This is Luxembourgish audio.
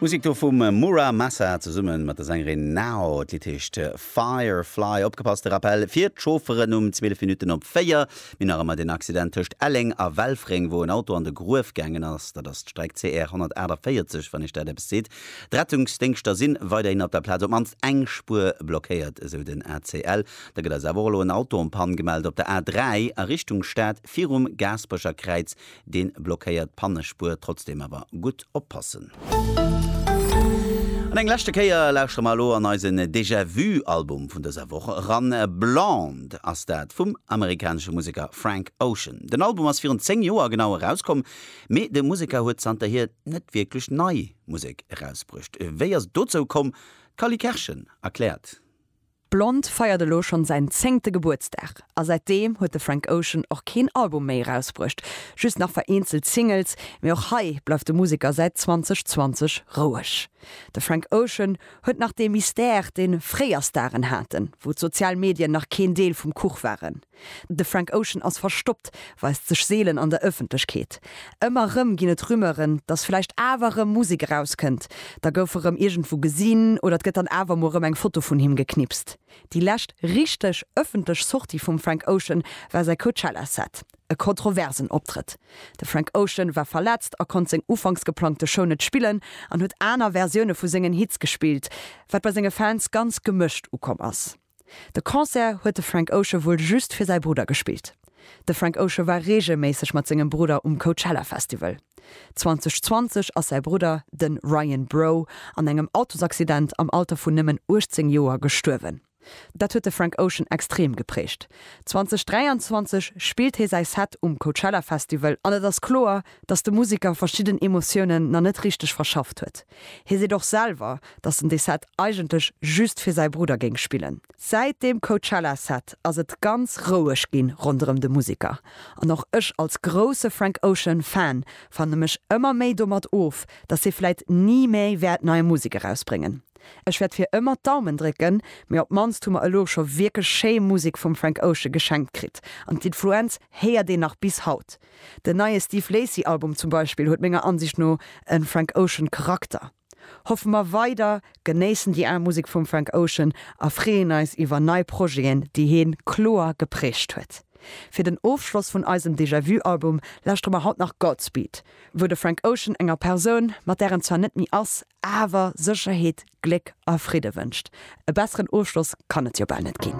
Musik do vum Mura Masa zesummen mat der Sängerin Nao. D'Lidd heescht Fire Fly. Opgepasst, de Rappel fir d'Chaufferen um 12 Minutten op 4. Mir nach ëmmer den Accident tëscht Elleng a Welfréng, wou en Auto an de Gruef gaangen ass. Dat ass d'Streck CR 148, wann Iech dat eppes seet. D'Rettungsdéngschter sinn weiderhin op der Plaz. Op d'mannst eng Spuer blockéiert, esou den ACL. Da gëtt eis awer och elo en Auto en panne gemellt op der A 3 a Richtung Stad virum Gaasperecher Kräiz deen blockéiert d'Pannespuer, trotzdem awer gutt oppassen. An eng leschte Kéier lauschtere mer elo an eisen Déjà Vu Album vun dëser Woch eran. Blonde ass dat vum amerikanesche Museker Frank Ocean. Den Album ass virun 10 Joer genau erauskomm, mee de Museker huet zanterhier net wierklech nei Musek erausbruecht. Wéi ass et dozou komm? D'Cally Kerschen erkläert. Blond feiert elo schonn säin zéngte Gebuertsdag a säitdeem huet de Frank Ocean och keen Album méi erausbruecht, just nach vereenzelt Singles. Mee och hei bleift de Museker säit 2020 roueg. De Frank Ocean huet nach dee Mystère, dee fréier Staren haten, wou d'sozial Medien nach keen Deel vum Kuch waren. De Frank Ocean ass verstoppt, weist sech seelen an der Ëffentlechkeet. Ëmmer erëm ginn et Rumeuren, datt vläicht awer erëm Musek erauskënnt. Da gouf e rëm iergendwou gesinn oder et gëtt dann awer emol erëm eng Foto vun him geknipst. Déi lescht richteg ëffentlech Sortie vum Frank Ocean war säi Coachella-Set. E kontroversen Optrëtt. De Frank Ocean war verletzt a konnt seng ufanks geplangte Show net spillen an huet aner Versioune vu sengen Hits gespillt, wat bei senge Fans ganz gemëscht ukomm ass. De Concert huet de Frank Ocean wuel just fir säi Brudder gespillt. De Frank Ocean war reegelméisseg mat sengem Brudder um Coachella Festival. 2020 ass säi Brudder, den Ryan Breaux, an engem Autosaccident am Alter vun nëmmen 18 Joer gestuerwen. Dat huet de Frank Ocean extrem geprägt. 2023 spillt hie säi Set um Coachella Festival an et ass kloer, dass de Musiker verschidden Emotiounen nach net richteg verschafft huet. Hie seet och selwer, datt en dee Set eigentlech just fir säi Brudder géing spillen. Säit deem Coachella-Set ass et ganz roueg ginn ronderëm de Museker. An och ech als grousse Frank Ocean Fan fanne mech ëmmer méi domat of, datt hie vläit ni mé wäert nei Musek erausbréngen. Ech wäert fir ëmmer d'Daumen drécken, mee op d'mannst hu mer elo scho wierklech schéi Musek vum Frank Ocean geschenkt kritt an d'Influenz héiert een nach bis haut. Den neie Steve Lacy Album zum Beispill huet menger Ansicht no en Frank Ocean Charakter. Hoffe mer weider, genéissen déi al Musek vum Frank Ocean a freeën eis iwwer nei Projeten déi heen kloer geprägt huet. Fir den Ofschloss vun eisem Déjà Vu Album lauschtere mer haut nach Godspeed, wou de Frank Ocean enger Persoun, mat där en zwar net méi ass, awer Sécherheet, Gléck a Fridde wënscht. E besseren Ofschloss kann et jo bal net ginn.